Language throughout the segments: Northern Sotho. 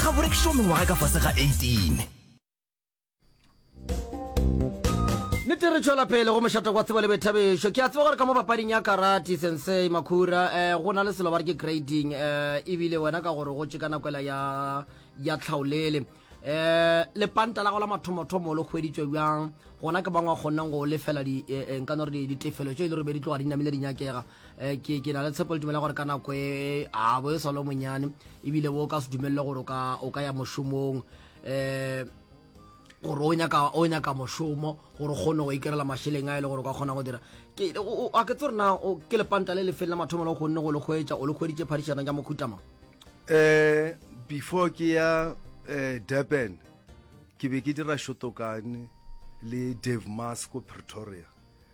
ga borekišo mengwaga ka fase ga 18 nete re tšwela pele go mošata kwa tsebo le boithabišo ke a tseba gore ka mo papading ya karate sensei makhura um go na le selo ba re ke grading um ebile wena ka gore go tše ka nakoela ya ya tlhaolele um lepanta la go la mathomothomo le kgweditswe bjang gona ke bangwe a kgonneng go lefela eh, eh, nka no re ditefelo tše e le gore be di tloga di namile di nyakega Eh, ke ke na le tshepo le dumela gore ka nako e a bo e salo monyane ebile bo ka se dumelele gore o ka ya mošomong um gore o nyaka o nyaka mošomo gore kgone go ikerela mašeleng a e le gore o ka kgona go dira ke a ke tse rena ke lepanta le lefeng la mathomo le kgonne go le kgwetsa o le kgweditse phadišano ja mokhutama um before ke ya um durban ke be ke dira shotokane le dave mas ko pretoria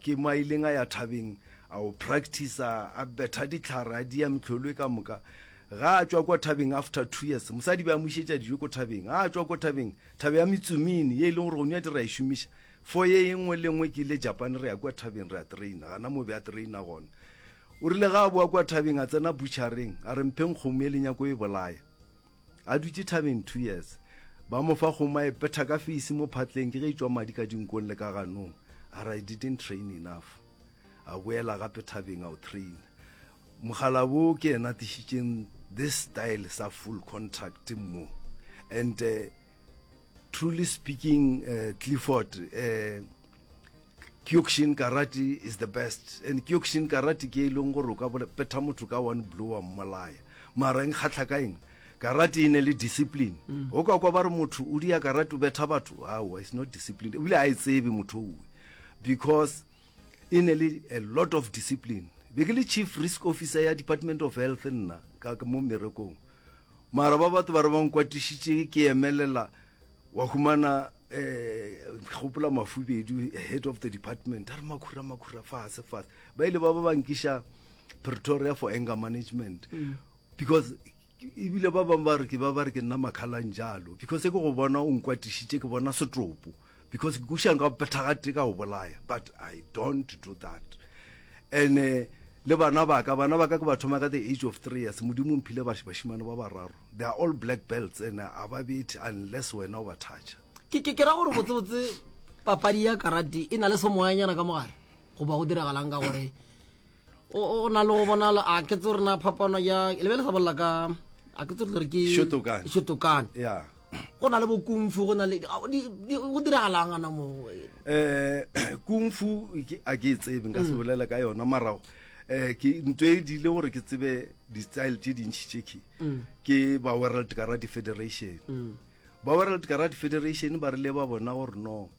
ke mo a ileng a ya thabeng a o practicer a betha ditlhare a dia metlholo e ka moka ga a tswa kwa thabeng after two years mosadi ba amošetša dijo ko thabeng ga a tswa ko thabeng thabe ya metsumini ye e leng gore gone ya dira e šomiša fo ye e nngwe le nngwe ke ile japan re ya kwa thabeng re a traina gana mo be a traina gona o rile ga a boa kwa thabeng a tsena butšhareng a re mpheng kgomo e lenyako e bolaya A dutše thabeng two years. Ba mo fa kgomo a e petha ka feisi mo phatleng ke ge e tšwa madi ka dinkong le ka ganong. A re I didn't train enough. A boela gape thabeng a o traina. Mokgalabo ke yena a tlišitšeng this style sa full contact mo and Truly speaking, uh, Clifford, uh, Kyokushin karate is the best and Kyokushin karate ke e leng gore o ka petha motho ka one blue wa mmolaya mara eng kgatlha ka eng karate e ne le discipline mm. o ka kwa ba re motho o dia karate o betha batho aowa is not discipline ebile a e tsebe motho owe because e ne le a lot of discipline be ke le chief risk officer ya department of health nna ka mo merekong mara ba batho ba re ba nkwatišitše ke emelela wa humana um ke gopola mafubedu head of the department a re makhura makhura fase fase ba ile ba ba ba nkiša pretoria for anger management mm. because E bile ba bangwe ba re ke ba ba re ke nna makhalang jalo because ke go bona o nkwatišitše ke bona setopo because ke kušang ka go phethagate ka go bolaya but I don't do that and uh, le bana baka bana baka ke ba thoma ka the age of three years modimo mphile bashimane ba bararo they are all black belts and a ba bethi unless wena o ba thatša ke ke ra gore botsebotse papadi ya karate e na le semoyanyana ka mogare goba go diragalang ka gore o na le go bonala a ke tse rena phapano ya le be le sa bolela ka a ke tse re ke shotokane ya go na le bo kung fu go na le go diragalang ana mo eh kung fu a ke tsebe nka se mm. bolela ka yona marago eh ke ntwe e dile gore ke tsebe di style tse dintsi tse ke mm. ke ba world karate federation mm. ba world karate federation ba rile ba bona gore no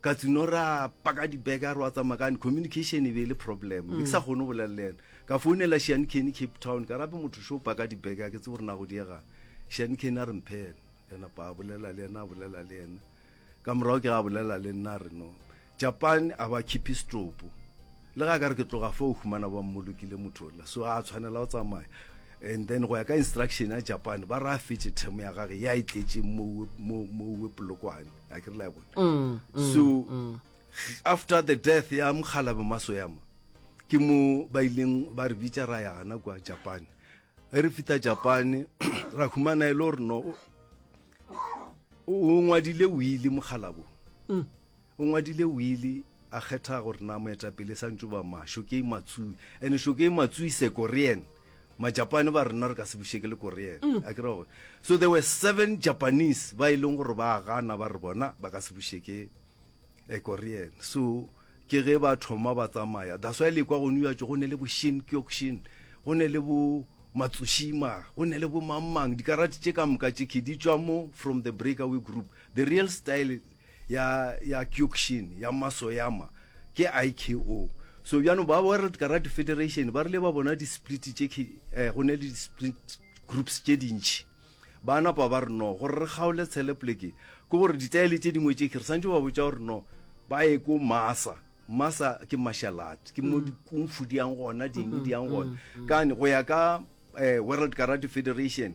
ka tseno ra paka dibeke a re wa tsamaya kane communication e be e le problem be ke sa kgone go bolela le ena ka founela shane kenny cape town ka rape motho sho paka dibeke a ke tse gore na go diega shane kenny a re mphene ena pa a bolela le ena a bolela le ena ka morago ke ga a bolela le nna a re no japan a ba khipe setopo le ga ka re ke tloga fo o humana ba mmolokile motho la so a tshwanela go tsamaya and then go ya ka instruction ya japan ba re a fetse themo ya gage ya e tletseng mo mo mo polokwane a ke re la bona mm, mm, so mm. after the death ya mokgalabe masoyama ke mo ba ileng ba re bitsa ra ya gana kwa japan e re fita japan ra humana e le gore no o ngwadile wile mokgalabo mm. o ngwadile wile a kgetha gore na moetapele sa ntse ba masho ke matsui and sho ke matsui sekorean Majapane ba rena re ka se bušeke le Korean mm. a kira gore so there were seven Japanese ba e leng gore ba gana ba re bona ba ka se bušeke a eh, Korean so ke ge ba thoma ba tsamaya that's why le kwa go New York go ne le bo Shin Kyokushin go ne le bo Matsushima go ne le bo mangmang dikarate tše ka moka tše ke di tswa mo from the breakaway group the real style ya ya Kyokushin ya Masoyama ke IKO so bjano ba World Karate Federation ba rile ba bona di split tše ke eh, go ne le di split groups tše dintši ba napa ba re no gore re kgaole tshele pleke ke gore ditaele tše dingwe tše ke re santse ba botsa gore no ba ye ko masa masa ke martial art ke mo mm. dikungfu di yang gona ding mm-hmm. di yang gona mm-hmm. kane go ya ka eh, world karate federation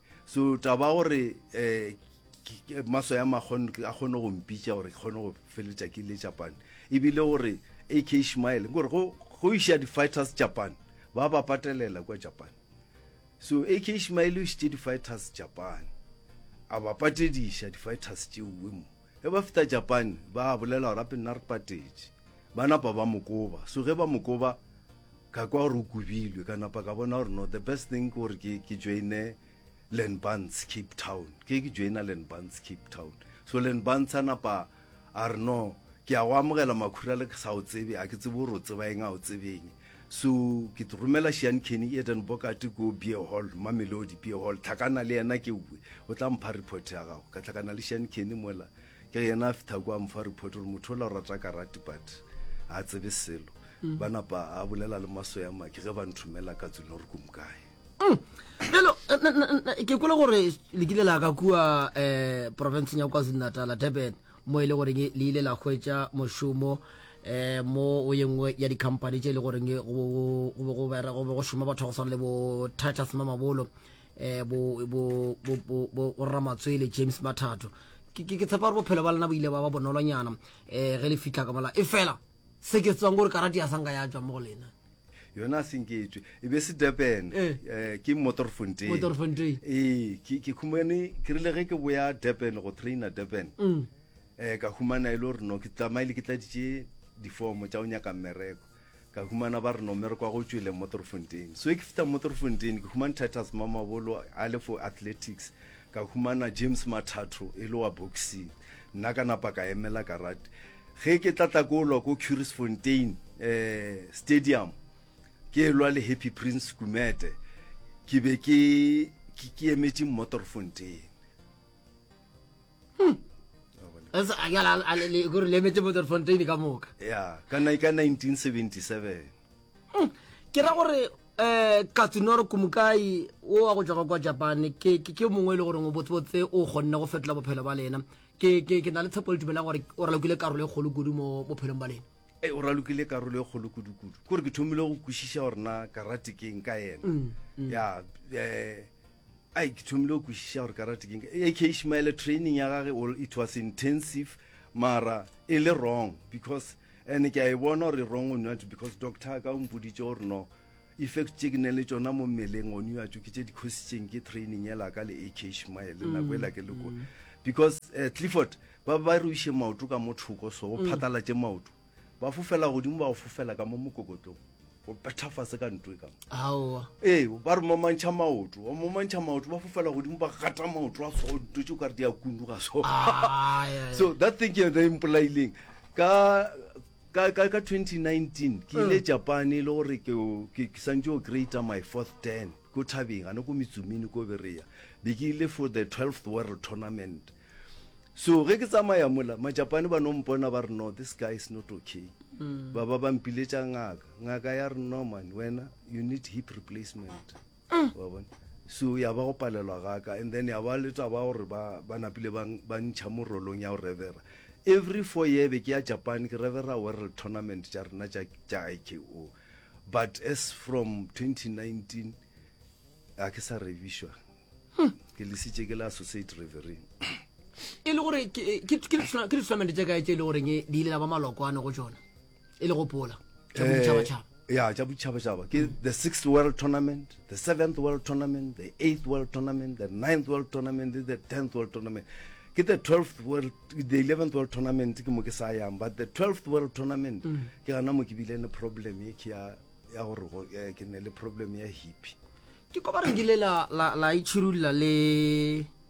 so taba gore um maso ya makgone a kgone go mpitša gore ke kgone go feletša ke le japan ebile gore ak ishmael gore go iša di-fighters japan ba ba patelela kwa japan so ak ishmael o išitše di-fighters japan a ba patediša di-fighters tšeowe mo Ge ba fihla Japane, ba a bolela gore gape nna re patetše. Ba napa ba mo koba. So ge ba mo koba, ka kwa gore o kobilwe. Ka napa ka bona gore no, the best thing ke gore ke, ke joine Lenbans Cape Town. Ke ke joina Lenbans Cape Town. So Lenbans a napa a re no, ke a go amogela Makhura le ke sa o tsebe, a ke tsebe gore o tseba eng, a o tsebe eng. So ke tlo romela Sean Kenny Eden Bokate ko Beer Hall, Mamelodi Beer Hall. Tlhakana le yena ke uwe. O tla mpha report ya gago. Ka tlhakana le Sean Kenny mola. Ke yena a fitha kwa mpha report gore motho ola o rata karate but a tsebe selo. Mm. Ba napa a bolela le maso ya maki ge ba nthomela ka tsone gore kumkae. Hello, mm. ke kula gore le kile la ka kua eh province ya KwaZulu-Natal, Durban. mo e le goreng le ile la hwetša mošomo um mo o ye nngwe ya dikhampani tše e le goreng go be go šoma batho go swana le bo titus mamabolo um borramatswele james mathato ke tshepa gore bophelo ba lena bo ile ba ba bonolonyana um ge le fitlha ka mola e fela Se ke tsebang gore karate ya sanka ya tšwa mo go lena. yona a senke e tswe e be se durban Eh. eh, ke motorfontein Motorfontein. ee ke ke khumane ke rile ge ke boya durban go trainer durban Mm. eh ka humana e le gore no ke tsamaile ke tladitše difomo tša go nyaka mmereko ka humana ba re no mmereko wa go tšwele motorfontein so e ke fita motorfontein ke humane titus mamabolo a le for athletics ka humana james mathatho e le wa boxing nna ka napa ka emela karate Ge ke tla hlakolwa ko Curisfontein Stadium ke lwa le Happy Prince Gumede, ke be ke ke emetše Mmotorfontein. Hmm. Gore le emetse Mmotorfontein ka moka? Ya, ka 1977. Hmm. Ke ra gore eh Katsunoro Kumukai o wa go tšwa kwa Japan ke ke mongwe e le gore o botsebotse o kgonne go fetola bophelo ba lena ke ke ke na le tshepo le tumela gore o ralokile karolo e kgolo kudu mo bophelong ba lena e o ralokile karolo e kgolo kudu-kudu kore ke thomile go kwešiša gore na karate ke eng ka ena mm, mm. ya eh, ai ke thomile go kwešiša gore karate ke eng e ke ishmaele training ya gage it was intensive mara e le wrong because and ke a e bona gore wrong o not because doctor ka o mpoditse gore no Effect tše ke neng le tšona mo mmeleng gone yo a tšo ke tše dikhositšeng ke training ela ka le AK Shmael le nako ela ke leko mm. because uh, Clifford ba ba re iše maoto ka mo thoko so go mm. phatalatše maoto ba fofela godimo ba go fofela ka mo mokokotlong go pethafase ka ntwe ka ee ba re momantšha maoto ba momantšha maoto ba fofela godimo ba gata maoto a so nto tse o kare di a kundu ga so ah, so that thing ke yone e mpolaileng ka Ka, ka, ka 2019 ke ile Japane le gore ke, ke, ke santse o greater my fourth ten ko thabeng ane ko metsumini ko bereya be ke ile for the 12th world tournament so ge ke tsamaya mola majapane ba no mpona ba re no this guy is not okay ba ba ba mpiletša ngaka ngaka ya re no man wena you need hip replacement mm. wa bona so ya ba go palelwa gaka and then ya ba le taba gore ba ba napile ba ba ntšha mo rolong ya go revera every four year be ke ya japan ke revera world tournament tša rena tša tša iko but as from 2019 a ke sa revišwa hmm. ke lesitše ke le associate revering e le gore ke ditournament tša kae tše e le goreng di ile la ba malokoane go tsona e le gopola tša eh, boditšhabatšhaba ya tša boditšhabatšhaba ke the sixth world tournament the seventh world tournament the eighth world tournament the ninth world tournament the tenth world tournament ke the 12th world the 11th world tournament ke mo ke sa yang but the 12th world tournament mm. ke gana mo ke bile ne problem ye ke ya ya gore eh, ke ne le problem ya hippie ke ko ba rengile la la la ichirulla le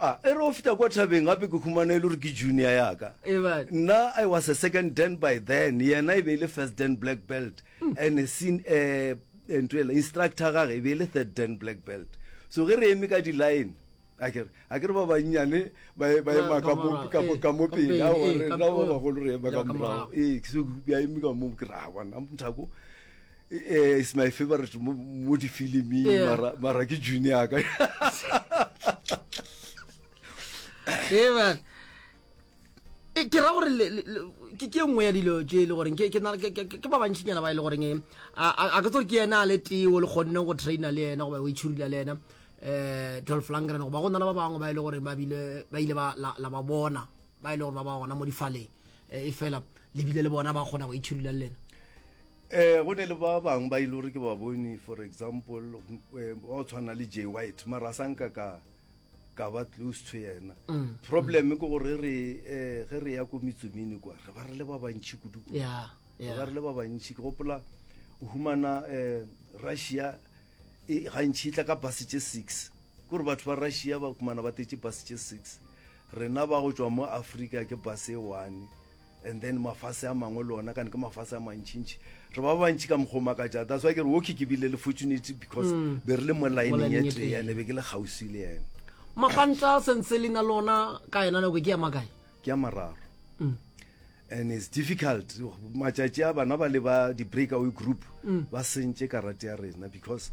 A e re o feta kwa thabeng gape ke humana e le gore ke junior ya ka. Ebale. Nna I was a second dan by then, yena e be e le first dan black belt. And sin, eh, eh, ntho ela, instructor gage e be e le third dan black belt. So ge re eme ka di-line, a ke re, a ke re ba bannyane ba e- ba Ba- ema ka ka mo- morago, ka mo- eh, ka mo ka pele, pele, aowa, eh, re- ka rena ba pele. bagolo re ema Ya ka ka morago. morago. Ee, ke se- ke a eme ka moo, ke re, "Ah, bona, mthako, Eh, is my favorite mo, mo difiliming yeah. mara, mara ke junior ka eban eh, ke ra gore ke ke nngwe ya dilo tse e le goreng ke ba bantšinyana ba e le goreng eh, a ke tsore ke ena a le teo le kgonne go traina le ena goba o itšhurila le ena um dolf langren goba go na le ba bangwe ba e le gore ba ile la ba bona ba e le gore ba ba gona mo difaleng e fela lebile le bona ba kgona go itšhurila le lena Eh, go ne le ba bang ba ile gore ke ba bone for example eh, ba o tshwana le j white mara a sa nka ka ka ba close to yena Mm, problem ke gore re eh, ge re ya ko metsomene kwa re ba re le ba bantšhi kudu kwa. ya re ba ya re le ba bantšhi ke gopola o humana um russia e gantšhi e tla ka bus tše six kore batho ba russia ba kumana ba tetse bus tše six rena ba go tšwa mo africa ke bus e one And then mafase a mangwe le ona kane ke mafase a mantšintši re ba bantši ka mokgwa o makatša that's why ke re okay ke bile le fortunity because mm. be re le mo lineng e tee ene be ke le kgauswi le ene mapantla sense le na lona ka yona nako ke ya makae ke ya mararo mm. and it's difficult matšatši a bana ba le ba di-breakaway group mm. ba sentše karate ya rena because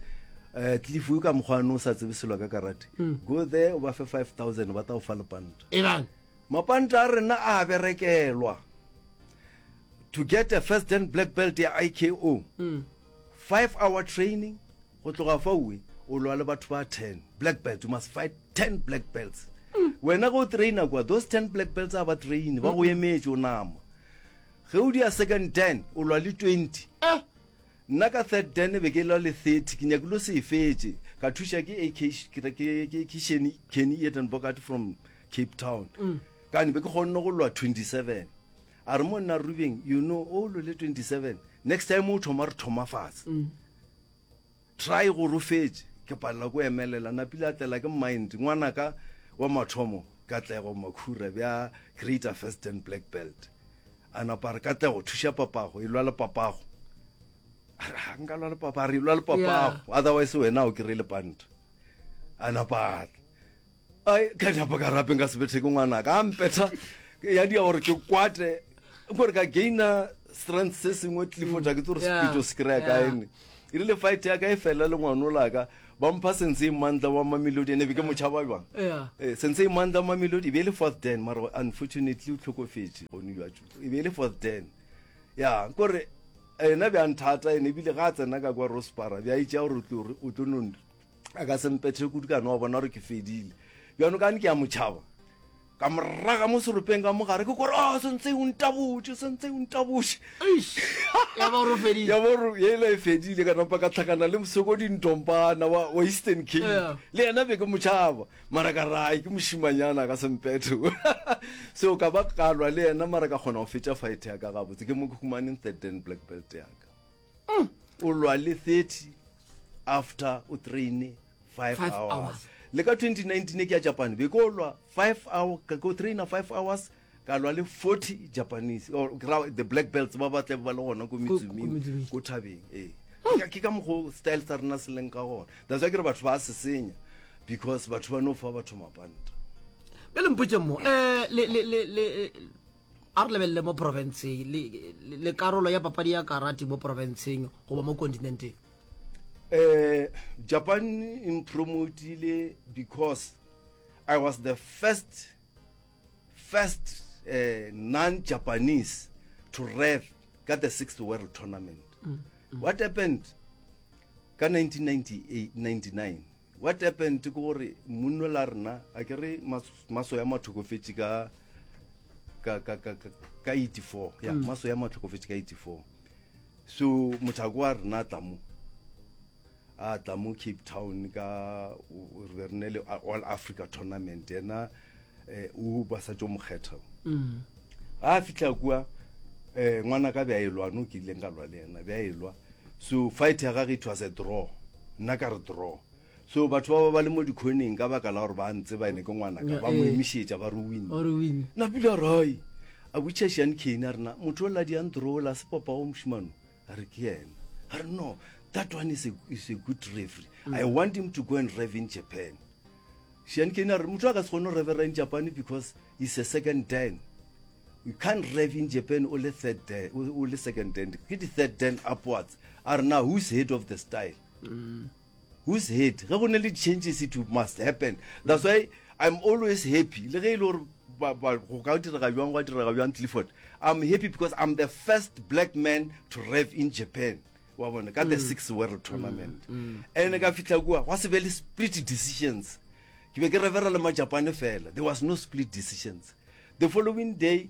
um eh, cliff o ka mokgwane o sa tsebe selo ka karate mm. go there o ba fe five thousand ba ta go fa lepanta Mapanta a rena a a berekelwa. To get a first dan black belt ya IKO, five hour training, go tloga fa uwe, o lwa le batho ba ten, black belts, you must fight ten black belts. Wena go traina kwa, those ten black belts a ba traine, ba go emetše, o nama. Ge o dia second dan, o lwa le twenty. Eh! Nna ka third dan be ke lwa le thirty, ke nyakilo se e fetše, ka thuša ke AK, ke, ke, ke, ke Sheni, Kenny Edenbogart from cape town mm. kane be ke kgonne go lwa 27 a re mo nna rubeng you know o lole 27 next time o thoma re thoma fatshe mm. try go rofetse ke palela ko emelela napile a tlela ke mind ngwana ka wa mathomo katlego makhura bja greater first and black belt a napa re katlego thuša papago e lwa le papago ga nka lwa le papa re lwa le papago otherwise wena o kry le panta a napa ai ka diapa ka rapeng ka sebetheke ngwana ka mpetha ya dia gore ke kwate gore ka gaina strength se sengwe tlifo ja ke tse gore Yeah. sepito se kry-a ka Yeah. ene e rile fight ya ka e fela le ngwano laka ba mpha sentse e mantla wa mamelodi ene be ke motšhaba jwang Yeah. Eh, sentse e mantla mamelodi e be e le fourth den mara unfortunately o tlhokofetse gone jwatso e be e le fourth den ya kore ena bjang thata ene ebile ga a tsena ka kwa rospara bja itšea gore o tlo- o tlo no a ka sempethe kudu ka no wa bona gore ke fedile bjano kane ke ya motšhaba ka moraga mo seropeng ka mogare ke kore a ah, sentse o ntabotse sentse o ntabotse ya boro ela e fedile ka napa ka tlhakana le mosoko dintompana wa eastern king le ena be ke motšhaba mara ka rae ke mošimanyana ka sempetho seo ka ba kalwa le ena mara ka kgona go fetša fight yaka gabotse ke mo ke humaneng third dan black belt yaka Mm. O lwa le 30 after o traine 5 Five hours. hours. Le ka 2019 ke ya Japan be ko lwa 5 hour ka ko traina 5 hours ka lwa le 40 Japanese or ke ra the black belts ba ba tle ba le gona ko ko Mitsuming Mitsuming. ko thabeng ee Ke ka- ke ka mokgo style sa rena se leng ka gona that's why ke re batho ba se senya because batho ba no fa batho mapanta bjale mpotse mo um le, le, le, le, A re lebelele mo porofenseng le, le karolo ya papadi ya karate mo porofenseng goba mo kontinenteng. Eh, Japan e mpromotile because I was the first, first uh, non-Japanese to rev ka the sixth world tournament. Mm, mm. What happened ka 1998, 99? What happened ke gore munno la rena a ke re maso ya matlhokofetše ka ka ka ka ka 84 ya mm. maso ya matlhokofetše ka 84 so mothako wa rena tla mo a tla mo cape town ka re be re ne le all africa tournament ena eh, o ba sa tšo mokgetha mm. ga a fitlha kua um eh, ngwana ka bja elwa no ke ileng ka lwa le yena bja elwa so fight ya gage it was a draw nna ka re draw so batho ba ba ba le mo dikgoneng ka baka la gore ba ntse ba ene ke ngwanaka ba mo eh. emišetša ba re win napila rai a butšha shan cane a rena motho o ladiang draw la sepopago mošimano a re ke yena a re no that one is a, is a good referee mm. i want him to go and rev in japan shiankeni a re motho a ka se kgone go revera in japan because is a second dan you can't rev in japan o le third dan o le second dan ke di-third dan upwards a re na who's head of the style mm. whose head ge go ne le changes it must happen that's why i'm always happy le ge e le gore go ka direga jwang gwa direga jwang clifford i'm happy because i'm the first black man to rev in japan wa bona ka the mm. six world tournament mm. Mm. and ka fitlha kua gwa se be le split decisions ke be ke revera le majapane fela there was no split decisions the following day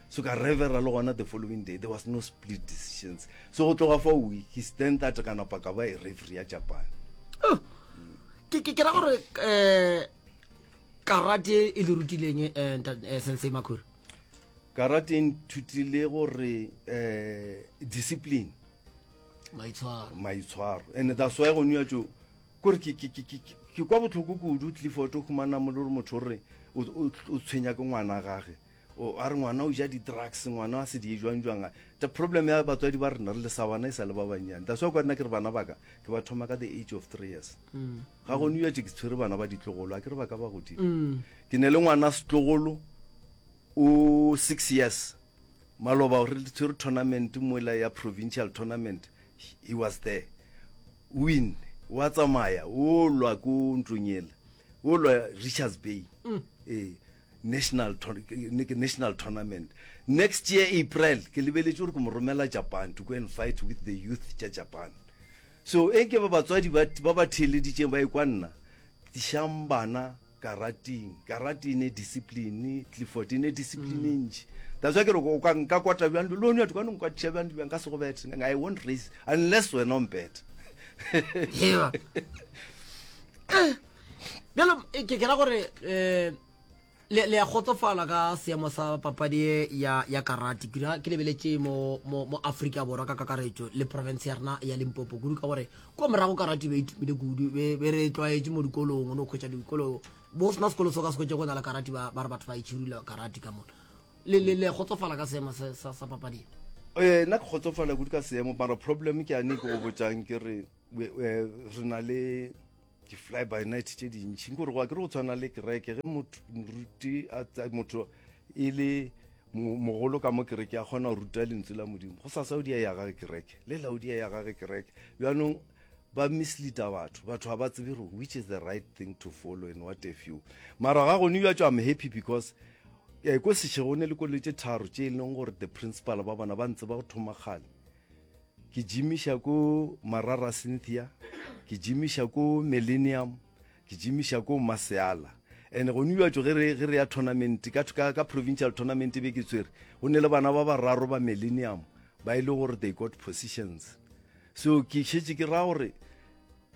so ka revera le gona the following day there was no split decisions so go tloga fa week he stand that ka napa ka ba e referee ya japan oh, ke ke ra gore eh karate e le rutileng eh, eh sensei makhura karate e nthutile gore eh discipline maitshwaro maitshwaro and that's why go nwa jo kore ke ke ke ke kwa botlhoko kudu tlifo to khumana mo le motho re o tshwenya ke ngwana gage o a re ngwana o ja di-drugs ngwana a se di jwang jwang the problem ya batswadi ba rena re le sa wana e sa le ba bannyane that's why kwa nna ke re bana baka ke ba thoma ka the age of three years mm. ga go new ke tshwere bana ba ditlogolo a ke re ba ka ba godimo mm. ke ne le ngwana setlogolo o six years maloba re tshwere tournament mola ya provincial tournament he was there win wa tsamaya o lwa ko ntlong ele o lwa richards bay mm. ee National ke national tournament next year April ke lebeletše gore ke mo romela Japan to go and fight with the youth tša Japan so e ke ba batswadi ba ba ba theeleditšeng ba ikwa nna tlišang bana karating karate ne discipline Clifford ne discipline mm. ntši that's why ke re o ka nka kwata bjang lo ne ka nka tša bjang bjang ka se go bete I won't raise unless wena o mpete bjalo eh, ke kera gore um le le a kgotsofala ka seemo sa papadi e ya ya karate kira ke lebeletse mo mo mo Africa borwa ka kakaretso le province ya rena ya Limpopo kudu ka gore kwa morago karate be itumile kudu be be re tlwaetse mo dikolong o no khwetsa dikolo bo sna sekolo so ka se khwetse go na le karate ba ba re batho ba itshirula karate ka mona le le le kgotsofala ka seemo sa sa, sa papadi e. Eh, nna ke kgotsofala kudu ka seemo mara problem ke ane ke go botsang ke re we- eh, re na le di-fly by night tše dintšhi nke gore go a ke re go tshwana le kereke ge moruti motho e le mogolo ka mo kereke a kgona go ruta lentswe la modimo go sasa o di ya gage kereke le la o di ya gage kereke bjanong ba misleada batho batho ga ba tsebe gore which is the right thing to follow and what a few mara ga gone bja tšo am happy because um ko sešego ne le koloi tše tharo tše e leng gore the principal ba bona ba ntse ba go thoma kgale ke jimiša ko Marara Cynthia, ke jimiša ko Millennium, ke jimiša ko Maseala. And gone uatšo ge re ge re ya tournament ka ka ka provincial tournament e be ke tswere go ne le bana ba bararo ba Millennium ba ile e gore they got positions so ke šetse ke ra gore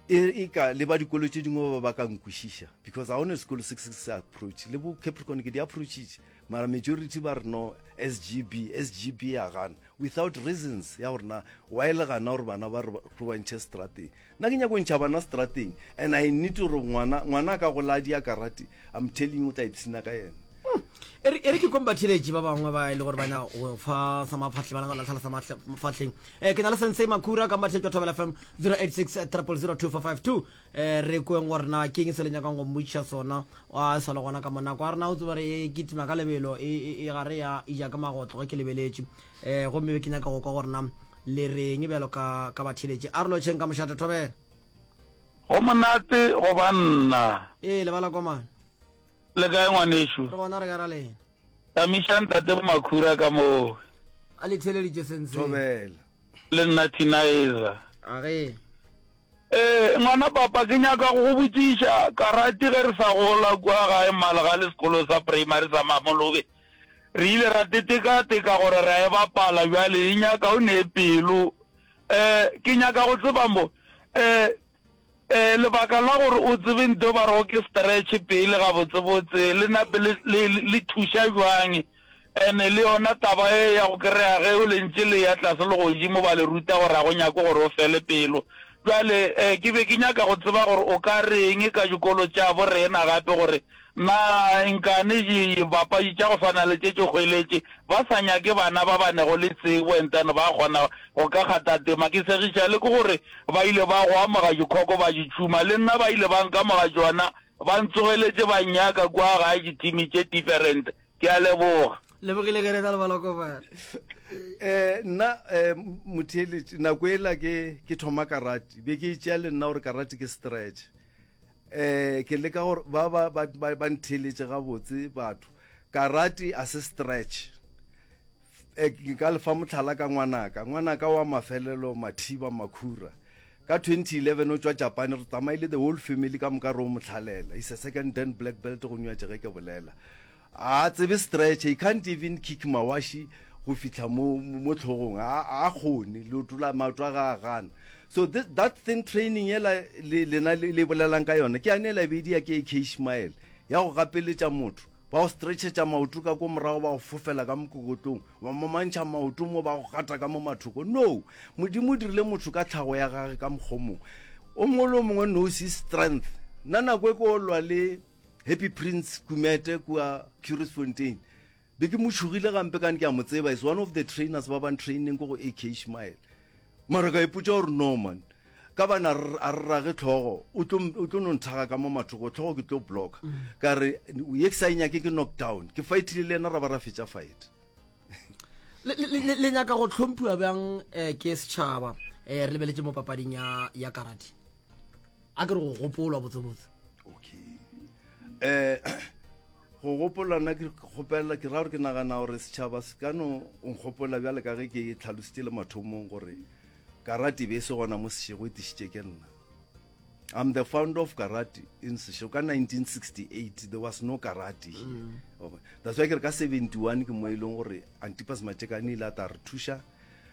e, e ka le ba dikolo tše dingwe ba ba ka nkwešiša because ga one sekolo se se se approach le bo capricorn ke di approachitše mara majority ba re no sgb sgb ya gana without reasons ya gore na wa e le gana gore bana ba re ba ntšhe strateng nna ke nyako ntšha bana strateng and i need gore ngwana ngwana a ka go ladi a karate i'm telling o tla ipshina ka yena hmm. e re ke komba theletše ba bangwe ba e le gore bana go fa sa maphatlhe ba nagana tlhala sa mafatlheng um eh, ke na le sensei makura ka mbatlhe jwa thobela fm 086 300 2452 Ee, re kweng gore na keng se le nyakang go mmotšiša sona. A sa le gona ka monako a rena o tseba re e kitima ka lebelo e, e, e gare ya ija ka magotlo ge ke lebeletše. Ee, gomme be ke nyaka go kwa gore na le reng bjalo ka, ka batheeletše. A re lotšheng ka mošate, thobela. Go monate go ba nna. Ee, lebala kwa mane. Le kae, ngwanešu? Re gona, re ka ra lena. Tamiša ntate Makhura ka moo. A le theeleditše senseng. Thobela. Le nna Thinaiza. A ge. Ee, ngwana papa ke nyaka go go botšiša, Karati ge re sa gola kua gae Malga le sekolo sa primary sa Mamolobe, re ile ra teteka-teka gore ra e bapala, bjale e nyaka o ne pelo. Ee, ke nyaka go tseba mo, ee, Ee, lebaka la gore o tsebe nto ba rego ke stretch pele gabotsebotse le na pele le le thuša jwang ene le yona taba e ya go kry-a ge o lentše le ya tlase le godimo ba le ruta gore ga go nyake gore o fele pelo jwale um ke be ke nyaka go tseba gore o ka reng ka dikolo tša bo rena gape gore Na nkane dibapadi tša go swana le tše tše hweletše ba sa nyake bana ba ba nego le tsebo e ntano ba kgona go ka kgatha tema? Ke segiša le ke gore ba ile ba go amoga dikhoko ba di tšhuma. Le nna ba ile ba nkamoga tšona, ba ntsogeletše ba nnyaka kua gae dithimi tše different. Ke a leboga. Lebogile ge re tla le baloko bana. Um nna um motheeletše nako ela ke ke thoma karate be ke e tšea le nna gore karate ke stretch Eh, ke leka gore ba ba ba ba, ba ntheeletše gabotse batho. Karate a se stretch. Eh, ke ka lefa motlhala ka ngwanaka. Ngwanaka wa mafelelo Mathiba Makhura. Ka 2011 o tšwa Japan, re tsamaile the whole family ka moka re o mohlalela. He's a second dan black belt go nywa tše ge ke bolela. A a tsebe stretcher, he can't even kick mawashi go fihla mo, mo hlogong, a, a a kgone, leoto la, maoto a ge a gana. So thi, that thing, training yela le, lena le, le bolelang ka yona, ke yane yela e be e dia ke AK Ishmael, ya go gapeletša motho, ba go stretchetša maoto ka ko morago ba go fofela ka mokokotlong, ba momantšha maoto mo ba go gata ka mo mathoko. No! Modimo o dirile motho ka tlhago ya Gage ka mokgwa o mongwe. O mongwe le o mongwe knows his strength. Nna nako e ke o lwa le. Happy Prince Kumete kua Currisfontein be ke mo tšhogile gampe kane ke a mo tseba is one of the trainers ba bang training ko go ak ishmael mara ka ipotsa gore no man ka bana a re rage tlhogo o tlo no nthaga ka mo mathogo tlhogo ke tlo blocka mm. ka re ye ke sa e nyake ke knock down ke fightile le ena ra ba ra fetsa fight le nyaka go tlhomphiwa bjang eh, ke setšhaba eh, re lebeletse mo papading ya karate a ke re go gopolwa botsebotse okay eh go gopola nna ke kgopelela ke ra gore ke nagana gore setšhaba se ka no nkgopola bjale ka ge ke tlhalositse le mathomong gore karate be e se gona mo sešego e tišitše ke nna I'm the founder of karate in Sesho ka 1968 there was no karate here mm. okay. that's why ke re ka 71 ke mo e leng gore Antipas Matekane ile a ta re thuša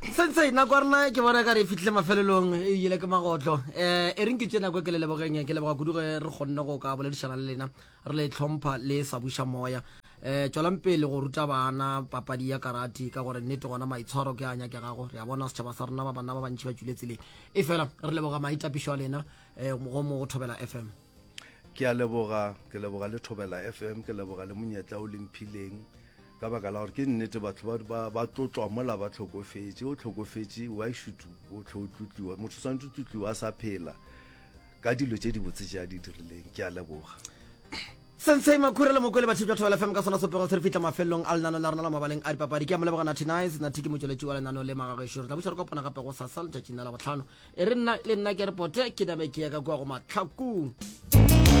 sentse e nako ya rena ke bona ka re fitlhile mafelelong e ile ke magotlo um e reng ke tse nako e ke le lebogeng ke leboga kudu ge re kgonne go ka boledišana le lena re le tlhompha le sa buša moya um tswelang pele go ruta bana papadi ya karati ka gore nnete gona maitshwaro ke a nyake gago re a bona setšhaba sa rena ba banna ba bantšhi ba tšwile tseleng e fela re leboga maitapišo a lena um go mo go thobela f m ke a leboga ke leboga le thobela f m ke leboga le monyetla o lemphileng ka baka la gore ke nnete batho ba, ba, ba tlotlwa mola ba tlhokofetše o tlhokofetše why should o tlho o tlotliwa motho o swanetse o tlotliwa a sa phela ka dilo tše dibotse tše a di dirileng ke a leboga sensei makhura le moko le bathipi batho ba lefm ka sona sopego se re fihla mafelelong a lenano la rona la mabaleng a dipapadi ke a mo leboga nathi nice nathi ke motšweletši wa lenano le magagešo re tla buša re kopana gape go sasa letšatšing la labotlhano e re nna le nna ke repote ke nabe ke ya ka kua go matlhakong